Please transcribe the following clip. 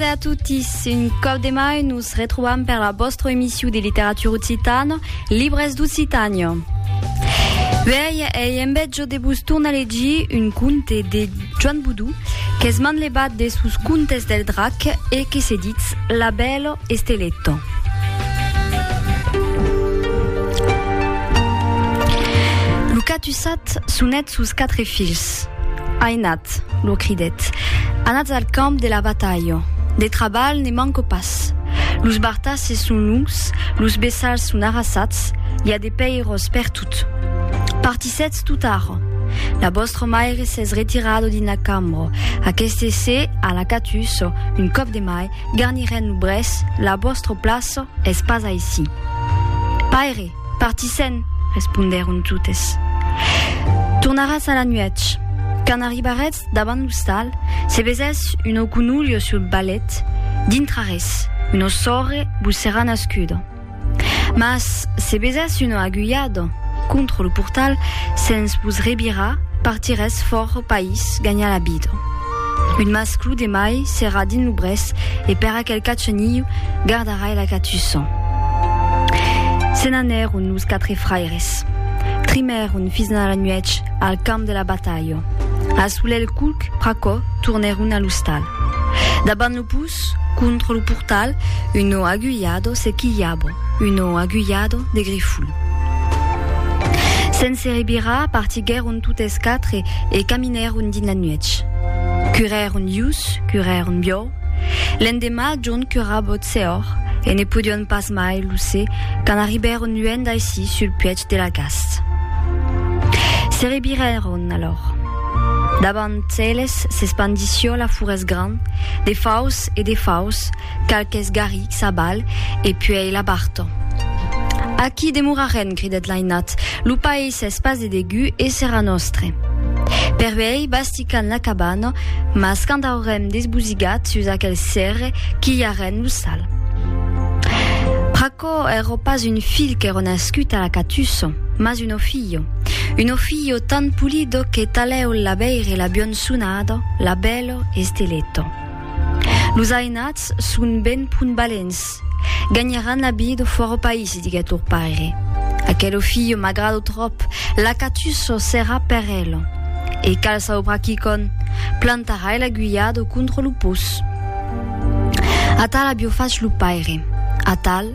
Bonasera a totis, un còp de mai nos retrobam per la vòstra emissiu de literatura occitana, Libres d'Occitània. Uèi ei en bèt jo de vos tornar legir un conte de Joan Boudou, qu'es manlevat de sos contes del drac e que se ditz La bèla esteleta. Lo catussat sonèt sos quatre filhs. Ainat, Cat, lo cridèt, anatz al camp de la batalha. De trabalh ne manco pas. Los bartasses son longs, los bessals son arrasats, i a de pèiros pertot. Partissetz tot ara. La vòstra maire s'es retirada dins la cambra. Aqueste se a la catussa, un còp de mai, garnirèn lo brèç, la vòstra plaça es pas aicí. Paire! Partissèn, respondèron totes. Tornaràs a la nuèch. Quand arribarètz davant l'ostal, se vesètz un oconolho sul balèt, dintrarètz una sòrre, vos serà nascuda. Mas se vesètz una aguilhada contra lo portal, sens vos revirar, partirètz fòra país, ganhar la vida. Un masclu de mai serà dins lo brèç e per aquel cachonilhu gardarai la catussa. Se n'anèron los quatre fraires. Trimèron fins a la nuèch al camp de la batalha. A solelh culc pr'aquò tornèron a l'ostal. Dabant lo pus, contra lo portal, uno agullado se quilhava, uno agullado de grifol. Sense rebirar partiguèron totes quatre e caminèron. Anèron dins la nuèch. Curèron lhus, curèron biòu. L'endemà, John currava ot sehòr, e ne podion pas mai lo se quand arribèron luènh d'aicí sul puèch de la gast. Se revirèron alòr. Davant eles s'espandissió la furès grand, de faus e de faus, Qualques garrics abal e puèi la barta. Aquí demorarem, cridèt l'ainat, lo país es pas de degut e serà nòstre. Per uèi basticam la cabana, mas quand aurem desbosigat sus aquel cèrre, quilharem lo sal. Pr'aquò èrò pas un filh qu'èrò nascut a la catussa, mas un ofilho. Un ofilho tan pulido que talèu la veire la bionsonada, la bèla esteleta. Los ainats son ben pun balents. Ganharàn la vida fòra o país, diguèt lor paire. Aquelo filho m'agrada tròp, l'acatusso, serà per el. E cal saubrar quicòm, plantarai l'aguilhada contra lo pus. Atal avió fach lo paire. Atal.